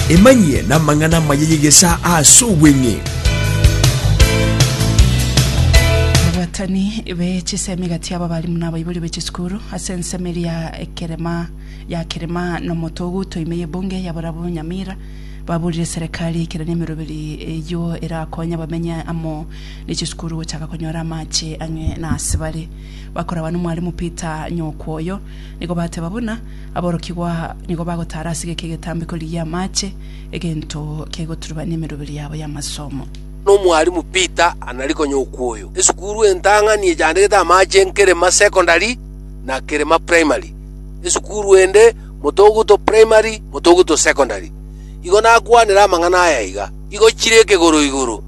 Emanyie namang'ana amaya y'egesaa ase obweng'e. Ababatani be chisemi gati yabo abalimu na abaibori be chisukuru ase ensemo eria ya ekerema ya kerema na omotogu toime y'ebunge ya barabwo Nyamira baburire serikali eikeranie emeroberi eyio erakonye abamenye amo ne chisukuru gochaka konyora amache ang'e na ase bare bakoraba nomwalimu Peter Nyokwoyo nigo bateba buna Aborokigwa nigo bagotaara ase geke egetambiko rigie amache, egento kegoturubania emeroberi yabo y'amasomo. Nomwalimu Peter Anarikonye Okuoyo, esukuru entang'ani echandegete amache Nkerema Secondary na Kerema Primary, esukuru ende Motoguto Primary, Motoguto Secondary. Igo nakwanere amang'ana aya iga, Igo chire ekegoro igoro,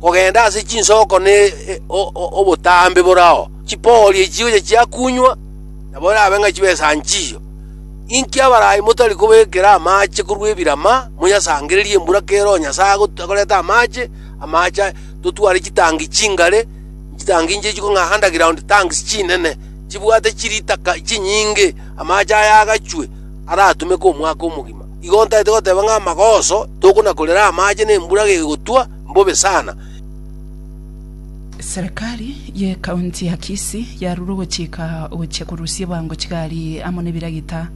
kogenda ase chinsoko ne obotambe bore ao, chipoorie chigocha chiakunywa, Nabo erabe ng'a chibesa nchiyo. Inki abarai motari kobekera amaache korwa ebirama, monyasangererie embura kera onye Nyasae agot- agoreta amaache? Amaache totware chitangi chingare, chitangi inche echiko ng'a underground tanks chinene, chibwate chiritaka chinyinge. Amaache aya agachwe, aratumeke omwaka omogima. Igo ntaete goteba ng'a amagoso tokona-korera amaache na embura gegotwa mbobe sana. Serikali y'Ekaunti ya Kisii yarure ogochika gochia korusia ebango chigari amo n'ebiragita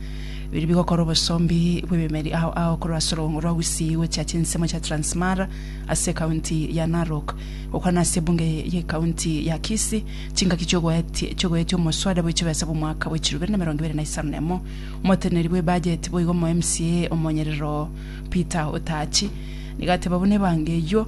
biria bigokora obosombi bw'ebimeri ao ao korwa ase orog'ongo rwa Gusii gochia chinsemo chia Transmara ase ekaunti ya Narok. Gokwana ase ebunge y'Ekaunti ya Kisii, chingaki chiogoetia chiogoetia omoswada bw'echibesa bw'omwaka bwa echiromo ibere na emerongo ibere na isano na emo. Omoteneneri bw'ebajeti boigo omo-MCA omonyerero Peter Otachi nigo ateba buna ebango eyio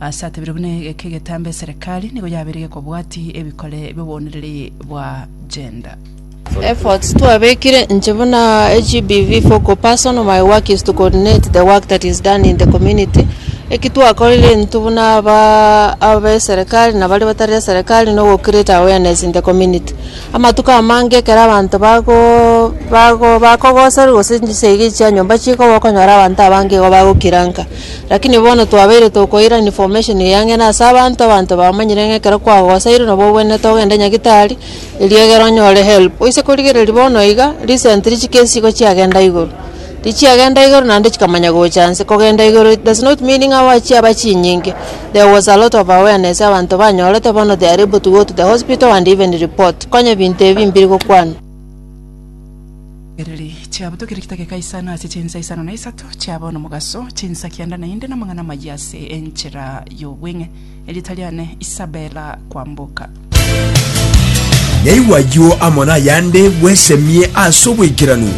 Ase atebire buna egeke egetambe eserekari nigo yabeire gekobwati ebikore bi'obooniriri bwa gender. Efforts twabekire inche buna GBV focal person my work is to coordinate the work that is done in the community eki twakorire intwe buna aba abe serikali na baria batari serikali no go create awareness in the community amatuko amange ekero abanto bago bago bakogoserwa gose chisegi chia nyomba chikogwa okonyora abanto abange igo bagokiranka Rakini bono twabeire tokoirana information eyang'ina ase abanto, abanto bamanyire ng'a ekero kwagosairwe nabo obwenerete ogende nyagitari, erio egere onyore help. Oise korigereria bono iga, recent chikesi igo chiagenda igoro, richiagenda igoro naende chikamanya gocha nse, kogenda igoro it does not mean ng'a aba chiaba chinyinge, there was a lot of awareness abanto banyorete bono they are able to go to the hospital and even report, konya binto ebi mbiri gokwanwa. Chiriri chiabo tokire chitake kaisano ase chinsa isano na isato chiabo nomogaso, chinsa kianda naende namang'ana amayia ase enchera y'obweng'e. Erieta riane Isabella Kwamboka. Naigwa ayio amo nayande bwesemie ase obwaikeranu.